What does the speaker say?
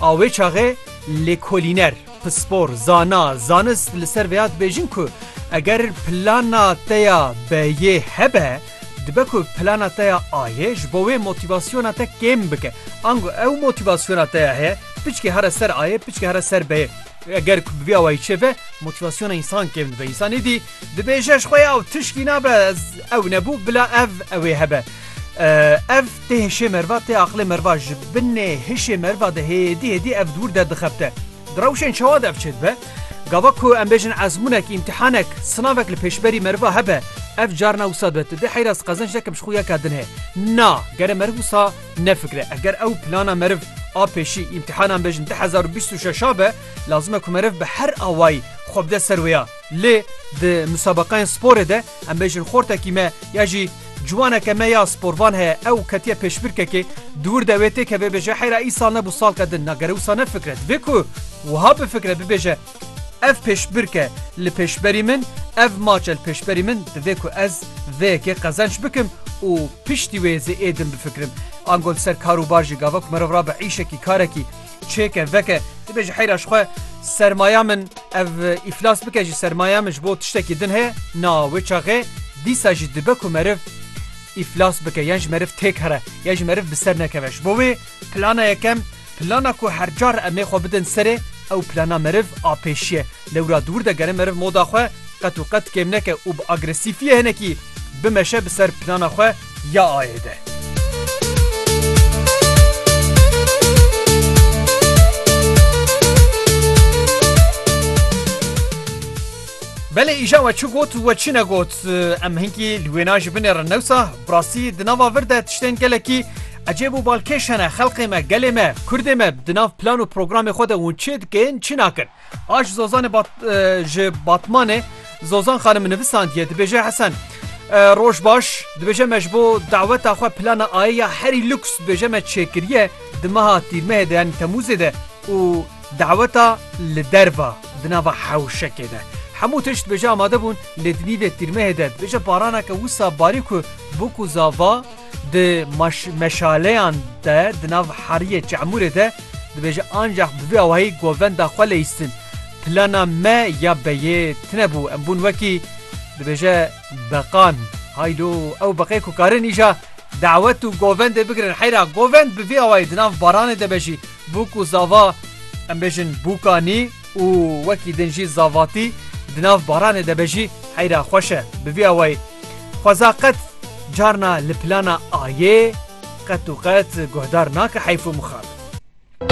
A wê çaxê lêkolîner, pispor, zana, zanist li ser vêya dibêjin ku eger plana te ya B yê hebe, dibe ku plana te ya A yê ji bo wê motîvasyona te kêm bike. Ango ew motîvasyona te ya heye, piçke here ser A yê, piçke here ser B yê. Eger ku bi vî awayî çêbe, motîvasyona însan kêm dibe. Însan êdî dibêje ji xwe ya ew tişkî nabe, ez ew nebû bila ev ewê hebe. Ev Tê hişê merva tê aqilê merva ji binê hişê merva de hêdî hêdî ev dûr derdiqebte. Di rewşên çawa de ev çêdibe? Gava ku em bêjin ezmûnek, îmtîhanek, sinavek li pêşberî merva hebe, ev carna wisa dibe tu dê heyra ez qezenc nekim ji xwe ya ka din heye. Na, gere meriv wisa nefikire. Eger ew plana meriv a pêşî, îmtîhana em bêjin du hezar û bîst û şeş a be, lazim e ku meriv bi her awayî xwe bide ser wê ya. Lê di musabaqeyên sporê de, Em bêjin xortekî me ya jî ciwaneke me ya sporvan heye ew ketiye pêşbirkekê dûr de wê têkeve bêje heyra îsal nebû salka din na gere wisa nefikre divê ku wiha bifikre bibêje ev pêşbirk e li pêşberî min ev maç e li pêşberî min divê ku ez vê yekê qezenç bikim û piştî wê zêê din bifikrim ango li ser kar û bar jî gava ku merov rabe îşekî karekî çêke veke dibe ji heyra ji xwe sermaya min ev îflas bike ji sermaya min ji bo tiştekî din heye na wê çaxê dîsa jî dibe ku meriv îflas bike yan ji meriv têk here ya ji meriv bi ser nekeve ji bo wê plana yekem plana ku her car em ê xwe bidin serê ew plana meriv a pêşiye lewra dûr de gere meriv moda xwe qet û qet kêm neke û bi agresîfiyê hinekî bimeşe bi ser plana xwe ya ayê de. Belê îja we çi got û we çi negot em hinkî li wêna ji binê re newsa birastî di nava vir de tiştên gelekî ecêb û balkêş hene xelqê me gelê me kurdê me di nav plan û programê xwe de hûn çi dikin çi nakin. A ji Zozanê bat ji Batmanê Zozan xanim nivisandiye dibêje Hesen. Roj baş dibêje me ji bo daweta xwe plana ayê ya herî lûks dibêje me çêkiriye di meha tîrmehê de yanî temûzê de û daweta li derva di nava hewşekê de. Hemû tişt dibêje amade bûn lê di nîvê tîrmehê de dibêje baraneke wisa barî ku bûk û zava Di meşaleyan de di nav heriyê Çe'mûrê de dibêje ancax bi vî awayî govenda xwe leyîstin. Plana me ya beyê tine bû em bûn wekî dibêje beqan. Haydo ew beqê ku karin îja dawet û govendê bigirin heyra govend bi vî awayî di nav baranê de be jî bûk û zava em bêjin bûkanî û wekî din jî zavatî di nav baranê de be jî heyra xweş e bi vî awayî. Xweza qet carna li plana Ayê qet û qet guhdar nake heyf û mixabin.